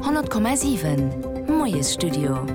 100,7 Moiesstudio.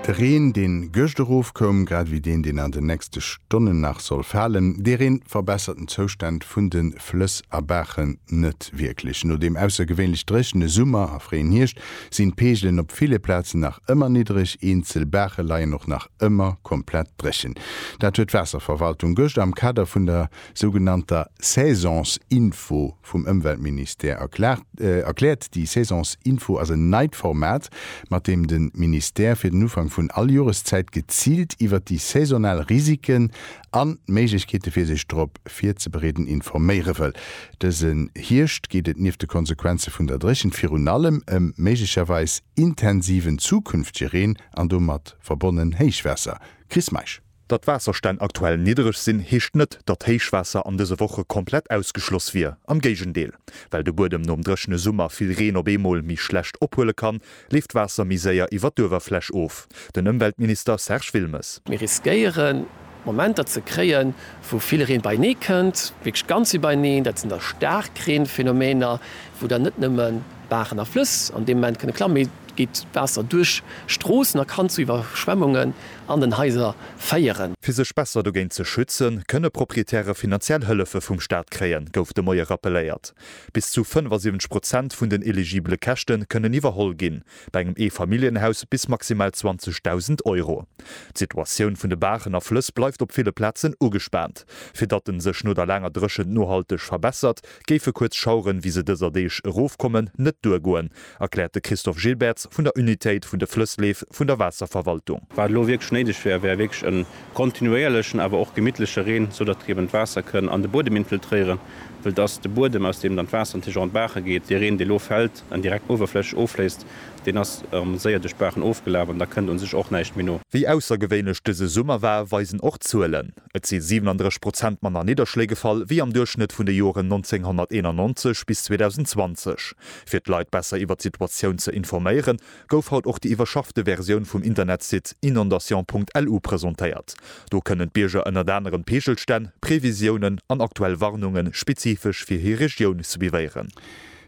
De Reen, deen gëscht erofkoum, grad ewéi deen, deen an den nächste Stonnen nach soll falen, dee Reen verbessert den Zoustand vun de Flëss a Baachen net wierklech. No deem aussergewéinlech dréchene Summer a fréien Hierscht sinn d'Peegelen op ville Plazen nach ëmmer niddreg, eenzel Baache leien och nach ëmmer komplett dréchen. Dat huet d'Waasserverwaltung gëscht am Kader vun der sougenannter Saisonsinfo Vum Ëmweltministère erkläert, déi Saisonsinfo ass en neit Format, mat deem de Ministère fir den Ufank vun all Joreszäit geziilt iwwert déi saisonal Risiken an d'Méiglechkeete fir sech drop virzebereeden informéiere wëll. Dëse Hierscht geet et nieft de Konsequenze vun der Dréchent virun allem ëm méiglecherweis intensiven zukünftege Reen an domat verbonnen Héichwaasser. Chris Meisch. Datt d'Waasserstänn aktuell niddereg sinn, heescht net, datt Héichwaasser an dëse Woche komplett ausgeschloss wier. Am Géigendeel. Well de Buedem nom dréchene Summer vill Reen op eemol méi schlecht ophuele kann, leeft d'Waasser méi séier iwwer d'Uewerfläch of. Den Ëmweltminister Serge Wilmes. Mir riskéiere Momenter ze kréien, wou vill Reen beienee kënnt, wierklech ganz iwwerneen. Dat sinn da Staarkreenphenomener, wou dann net nëmme Baachen a Flëss an deem Moment kënne klammen, mee et geet Waasser duerch Stroossen a kann zu Iwwerschwemmunge an den Haiser féieren. Fir sech besser dogéint ze schützen, kënne Proprietäre finanziell Hëllefe vum Staat kréien, gouf de Moie rappelléiert. Bis zu 75 Prozent vun den eligibele Käschte kënnen iwwerholl ginn, bei engem Eefamilljenhaus bis maximal 20.000 Euro. D'Situatioun vun de Baachen a Flëss bleift op ville Plazen ugespaant. Fir datt en sech no der laanger Dréchent nohalteg verbessert, géife kuerz Schaueren, wéi se dëser Deeg erofkommen, net duergoen, erkläert de Christophe Gilbertz vun der Unitéit vun de Flëssleef vun der Waasserverwaltung. Wat elo wierklech néideg wär, wär wierklech e kontinuéierlechen, awer och gemittleche Reen, sou datt eben d'Waasser kënn an de Buedem infiltréieren, wëll et ass de Buedem, aus deem dann d'Waasser natierlech och an d'Baache geet. Dee Reen, dee elo fält an direkt uewerflächeg offléisst, deen ass séier duerch d'Baachen ofgelaf an da kënnt u sech och näischt méi no. Wéi aussergewéinlech dëse Summer war, weisen och d'Zuelen. Et si 37 Prozent manner Nidderschléi gefall wéi am Duerchschnëtt vun de Joren 1991 bis 2020. Fir d'Leit besser iwwer d'Situatioun ze informéieren, gouf haut och déi iwwerschaffte Versioun vum Internetsite inondation.lu presentéiert. Do kënnen d'Bierger ënnert anerem d'Peegelstänn, Previsiounen an aktuell Warnunge spezifesch fir hir Regioun suivéieren.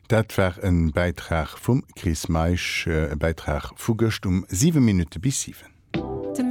Dat war e Bäitrag vum Chris Meisch, e Bäitrag vu gëscht um 7 Minutte bis 7.